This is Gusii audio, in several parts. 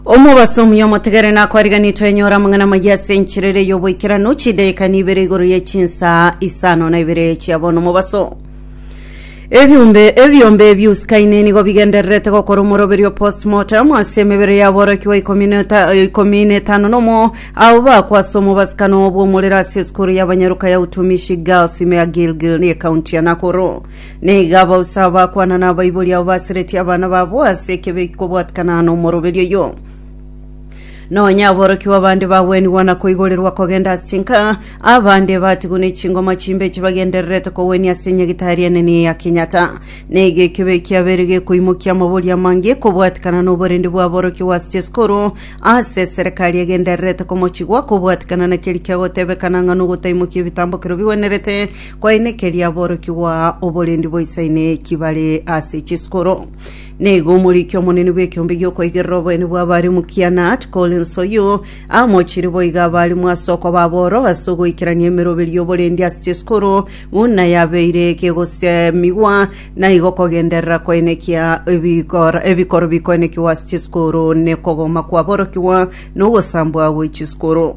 omobaso omuya omotegere nakwariganitwe enyora amang'ana amaya ase enchirere y'oboikeranu chidaika nibere igoro ye chinsaa isano na ibere chiabono omobaso ebiumbe ebiombe biusikaine nigo bigendererete gokora omoroberio postmortem ase emebere yaborokigwa ikomi na eta- ikomi na etano nomo abo bakwa ase omobasikano bw'omorero ase esukuru y'abanyaruka ya utumishi girls ime ya gilgil ne ekaunti ya nakuru Nigo abausa abakwana na abaibori abo basiretie abana babo ase ekebe kobwatikana n'omoroberi oyo. Nonya aborokigwa abande bagwenigwa na koigorerwa kogenda ase chinka, abande batigwe ne chingoma chimbe chibagendererete kogwenia ase nyagitari enene ya Kenyatta. Nigo ekebe kiabeire gekoimokia amabori amange kobwatikana n'oborende bwa aborokigwa ase chisikuru ase eserekari egendererete komochigwa kobwatikana na keria kiagotebekana ng'a nogotaimokia ebitambokero bigwenerete Koenekeria aborokigwa oborendi boisaine ki bare ase chisikoro. Nigo omoriki omonene bw'ekeombe gi'okoigerera oboene bw'abarimu Kiana Collins Oyuu amochirie boiga abarimu ase okoba aboro ase ogoikerania emeroberi y'oborendi ase chisikoro buna yabeire kegosemigwa naigo kogenderera koenekia ebikor- ebikoro bikoenekigwa ase chisikoro nekogoma kwaborokigwa nogosambwa gwe chisikoro.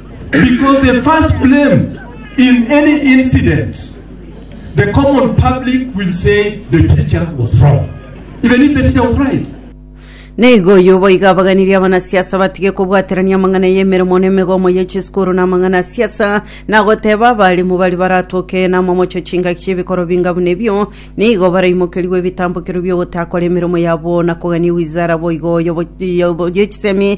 Because the first blame in any incident, the common public will say the teacher was wrong, even if the teacher was right. Nigo oyio boigo abaganirie abanasiasa batige kobwaterania amang'ana y'emeremo na emegomo ye chisukuru na amang'ana a siasa, na goteba abarimu baria baratoke n'amamocho chingaki chi'ebikoro binga buna ebio, nigo baraimokerigwe ebitambokero bi'ogotakora emeremo yabo na kogania ewizara boigo y'obo- y'obo- y'echisemi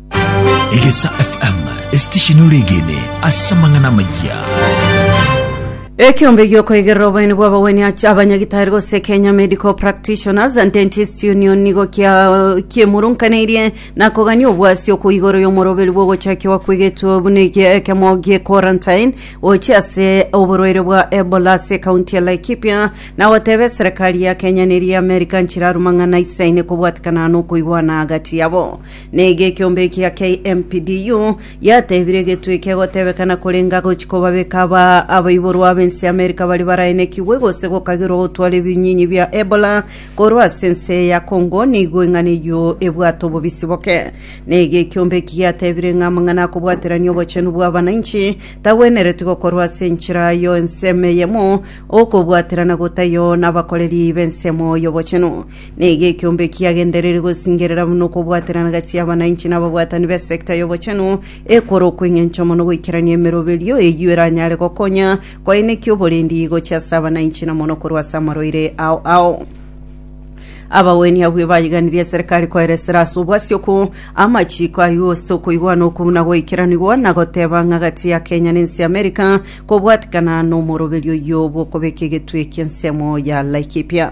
Egesa FM, esitesheni oregene ase amang'ana amayia. Ekeombe giokoigerera oboeni bw'abagwenia ach- abanyagitari gose Kenya Medical Practitioners and Dentist Union nigo kia- kiemurunkaneirie na kogania obwasi okwo igoro y'omoroberi bw'ogochakiwa kwegetwe buna ege- ekemo gie quarantine gochia ase oborwaire bwa Ebola ase ekaunti ya Laikipia na goteba eserekari ya Kenya neria America nchiraruma ng'ana isaine kobwatekana nokoigwana agati yabo Naki ekeombe ekia KMPDU yatebire getwe kegotebekana korenga gochi kobabeka aba abaiborwa ab'ense y'Amerika baria baraenekigwe gose gokagirwa gotwara ebinyinyi bia Ebola korwa ase ense ya Congo nigo eng'ana eyio ebwate obobisi boke. Naki ekeombe eki giatebire ng'a amang'ana akobwaterania obochenu bw'abananchi tagwenereti gokorwa ase enchera yo ensemo eyemo, okobwaterana gotaiyo nabakoreri b'ensemo y'obochenu. Nigo ekeombe ekiagendereri gosingerera buna okobwaterana gati y'abananchi na ababwatani b'esekta y'obochenu ekorokwa eng'encho mono goikerania emeroberio eyio eranyare gokonya koenekia oborendi gochia ase abananchi na mono korwa ase amarwaire ao ao. Abagwenia abwo ebaiganirie eserikari koera esera ase obwasioku, amachiiko aywo ase okoigwana okwo buna goikeranigwa na goteba ng'a gati ya Kenya na ense y'America kobwatikana nomoroberio oyio bw'okobeka egetwe eki'ensemo ya Laikipia.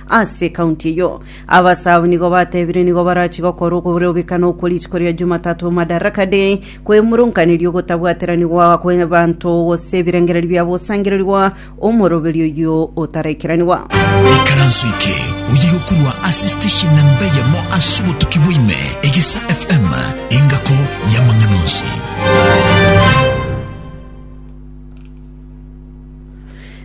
Ase ekaunti eyio, abasaao nigo batebire nigo barachi gokora okorobekana okwo rituko ria Jumatatu, Madaraka Day, kwemurunkaneria ogotabwateranigwa kw'ebanto gose ebirengererio bia bosangererigwa omoroberi oyio otaraikeraniwa. Ikaranso eke oye gokurwa ase station namba eyemo ase obotuki bwaime Egesa FM engako y'amang'ana onsi.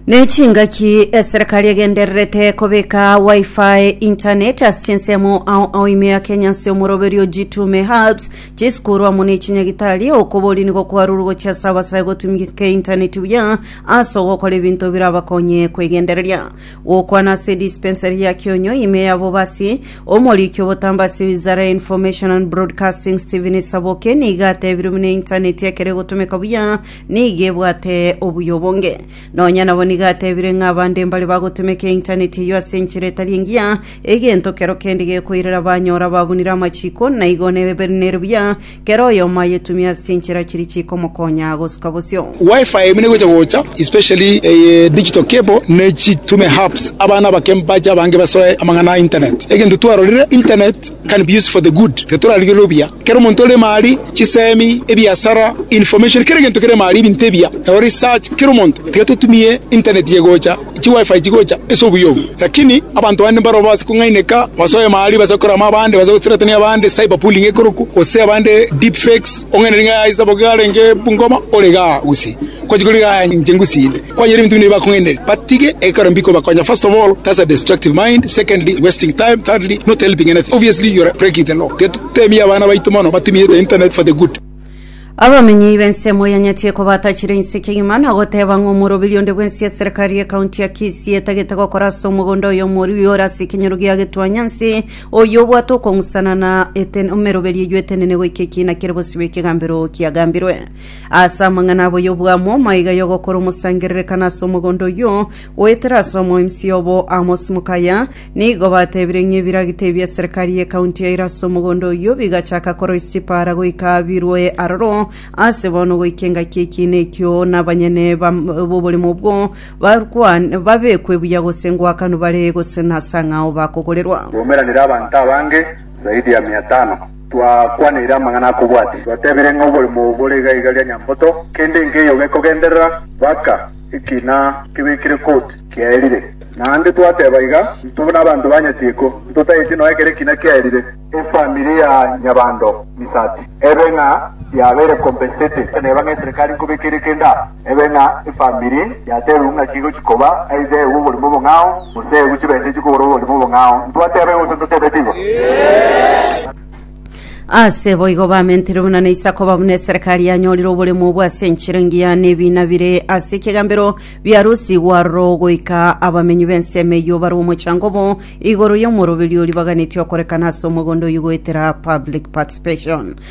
nechingaki eserekari egendererete kobeka wifi internet ase chinsemo ao ao ime ya kenya ase omoroberio jitume hubs chisukuru amo ne chinyagitari okobori nigo kwarurwe gochia ase abasae gotumika internet buya ase ogokora ebinto birabakonye kwegendereria gokwana ase dispensary ya kionyo ime ya bobasi omoriki obotamba ase wizara ya information and broadcasting stephen saboke nigo atebiru buna internet ekero egotomeka buya nigo ebwate obuya obonge. Nonya nabo nigo atebire ng'a abande mbare bagotumeka eintaneti eyio ase enchera etari engiya, egento kero kende gekoirera banyora ababunire amachiko, na igo nebe nere buya kera oyomo ayetumie ase chinchera chiria chikomokonya gosuka bosio. Wi-Fi ime negocha gocha especially eye digital cable ne chitume hubs abana abake mbache abange basoe amang'ana a internet. Egento twarorire internet. can be used for the good, iga torarigererwe obuya. Ekero omonto ore emari, chisemi, ebiasara, information, kera egento kere emari, ebinto ebiya, nabo research, kera omonto, tiga totumie internet iga egocha, chi wifi chigocha ase obuya obwo. Lakini abanto bande mbaro base kong'aineka, basoe emari, base gokora ama abande, base gothreaten abande, cyber bullying ekorokwa, gose abande deep fakes, ong'ainere ng'a yaya ase bogo iga arenge Bungoma, ore igaa gusii. Kwachia korigia aya inche ngusinde kwanyora ebinto buna ebi bakong'ainereria batige ekero mbikobakonya first of all that's a destructive mind secondly wasting time thirdly not helping anything obviously you're breaking the law tiga tutemie abana baito mono batumigete internet for the good Abamenyi b'ensemo ya Nyatieko batachire insekia igima na goteba ng'a omoroberio onde bwensi eserikari y'ekaunti ya Kisii etagete gokora ase omogondo oyo omorui ore ase ekenyoro gia Getwanyansi oyio obwate okong'usana na eten emeroberio eyio etenene goika ekiina kere bosibwa ekegambero kiagambirwe. Ase amang'ana aboyio bwamo maiga y'ogokora omosangererekano ase omogondo oyio, goetera ase omoemisia obo Amos Mukaya, nigo batebire ng'a ebiragita ebia serikari y'ekaunti yaire ase omogondo oyio bigachaka koroisia chipaara goika birwe aroro ase bono goika engaki ekiina ekio na abanyene bam- b'oboremo obwo bakwan- babekwe buya gose ngoakanwe bare gose nase ang'ao bakogorerwa. Bwaumeranire abanto abange zaidi ya mia tano. Twakwaniire amang'ana akobwati, twatebirie ng'a oborimo oo bore iga iga ria nyamboto, kende nkeiyo gekogenderera mpaka ekina kebekire koti kiaerire. Naende twateba iga, Intwe nabanto ba nyatieko, ntotaeti nonya ekero ekina kiaerire, efamiri ya nyabando misati ebe ng'a yabeire compensated, neba ng'a eserekari nkobekere kende aa. Ebe ng'a efamiri ya Tehu ng'aki egochi koba aidha ewu oborimo obong'ao, gose ewu chibesa echi kogora oborimo obong'ao? Ntwatebe gose ntoteebeti igo? Ase boigo bamenterwe buna na Isaka oba buna eserekari yanyorire oboremo obwo ase enchera engiya na ebiina bire ase ekegambero biarusigwe aroro goika abamenyi b'ensemo eyio barwe omochango obo igoro y'omoroberio oria baganetie okorekana ase omogondo oyio goetera public participation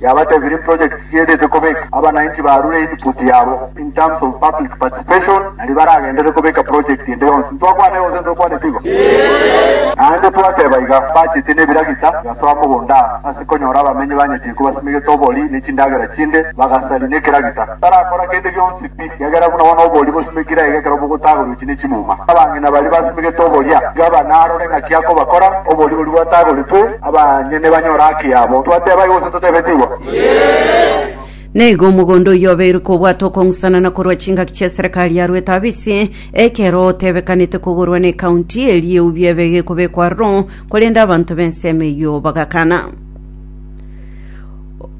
yabatebirie projects chiedete kobeka abanainchi barure input yabo in terms of public participation naria baragendere kobeka project ende yonsi. Ntwakwana yonsi ntokwanete igo? Naende twateba iga, bachete nebiragita bigasoa mogondo aa, ase konyora abamenyi ba Nyachiko basimegete obori ne chindagera chinde, bagasari nekeragita. Tarakora kende gionsi pi. Ekiagera buna bono oboria bosimekire aiga ekero bogotagorweti ne chimuma. Abang'ina baria basimegete oboria, tiga banarore ng'aki akobakora, oboria boria bwatagoretwe, abanyene banyore haki yabo. Twateba igo gose totebeti igo? Na igo omogondo oyio obeirwe kobwatwa okong'usana na korwa chingaki chi'eserekari ya Rwetabisi, ekero otebekanete kogorwa n'ecounty, erio eu biabe egekobekwa aroro, korende abanto b'ensemo eyio bagakana.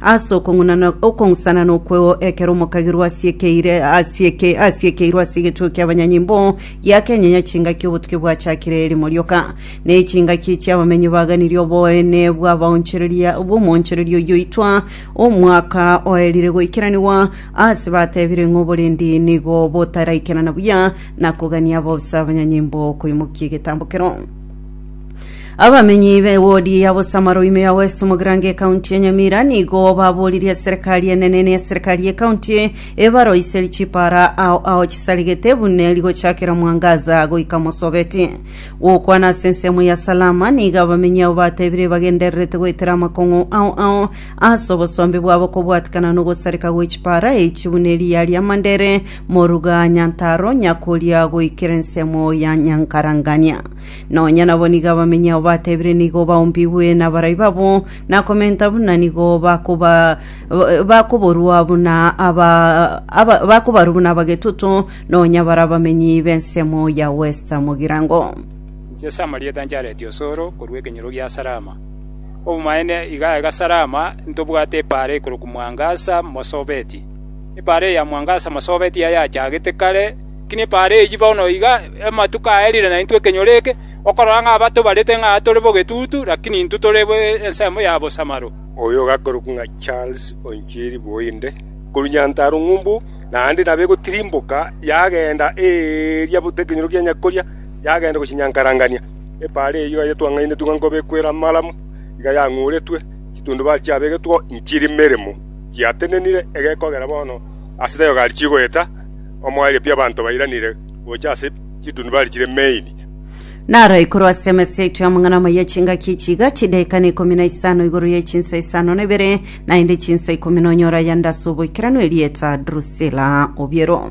Ase okong'unana okong'sanana okw'eo, ekero omokagirwa asiekeire asieke asiekeirwe ase egetuo ki'abanyanyimbo, giakenyenya chingaki obotuki bwachakire erimo rioka. Na echingaki chi'abamenyi baganirie oboene bw'abaonchoreria bw'omoonchoreria oyio oitwa omwaka oerire goikeranigwa, aase batebire ng'a oborendi nigo botaraikerana buya na kogania bobisa abanyanyimbo koimokia egetambo keroo. Abamenyi be wodi ya Bosamaro ime ya West Mogrange county ya Nyamira nigo baboririe serikali enene ne serikali ye county ebaroiseri chipara ao ao chisaregete bune rigochakera mwangaza goika mosobeti. Gokwana ase ensemo ya Salama nigo abamenyi abo batebire bagendererete goetera amakong'u ao ao ase obosombe bwabo kobwatikana nogosareka gwe chipara echi bune riya ria Mandere Moruga Nyantaro nyakoria goikera ensemo ya Nyankarangania. Nonya nabo nigo abamenyi ao batebire nigo baombigwe nabarai babo, na komenta buna nigo bakoba bakoborua buna aba aba bakobarwa buna abagetutu, nonya bare abamenyi b'ensemo ya Westa Mogirango. Inche ase amarieta nchareti osoro korwa ekenyoro gia Salama. Obomaene iga aiga Salama ntobwate epaara ikorokwa Mwangasa mosobeti. Epaara eya mwangaso amasoobaiti aya achagete kare, lakini epaara eyio bono iga amatuko aerire naintwe ekenyoro eke, okorora ng'a batobarete ng'a tore bogetutu, lakini intwe tore ensemo ya bosamaro. Oyo ogakorokwa ng'a Charles Onchiri Bwoinde, korwa Nyantarua Ng'umbu, naende nabo egotirimboka yagenda eria buna ekenyoro kia Nyakoria, yagenda gochia Nyankarangania. Epaara eyio iga yatwang'ainetigwe ng'a nkobe ekwera amalamu, iga yang'uretwe, chitundubare chiabegetwe inchiri meremo. Chiatenenire egekogera bono ase Teogari chigoeta, omoerio pi abanto bairanire gocha ase chitunubari chire Maine. Naro ikorwa ase emesa yaito y'amang'ana amaya chingaki echi iga, chidaeka na ikomi na isano igoro ye chinsa isano na ibere, naende chinsa ikomi nonyora yande ase oboikeranu erieta Drusila obiero.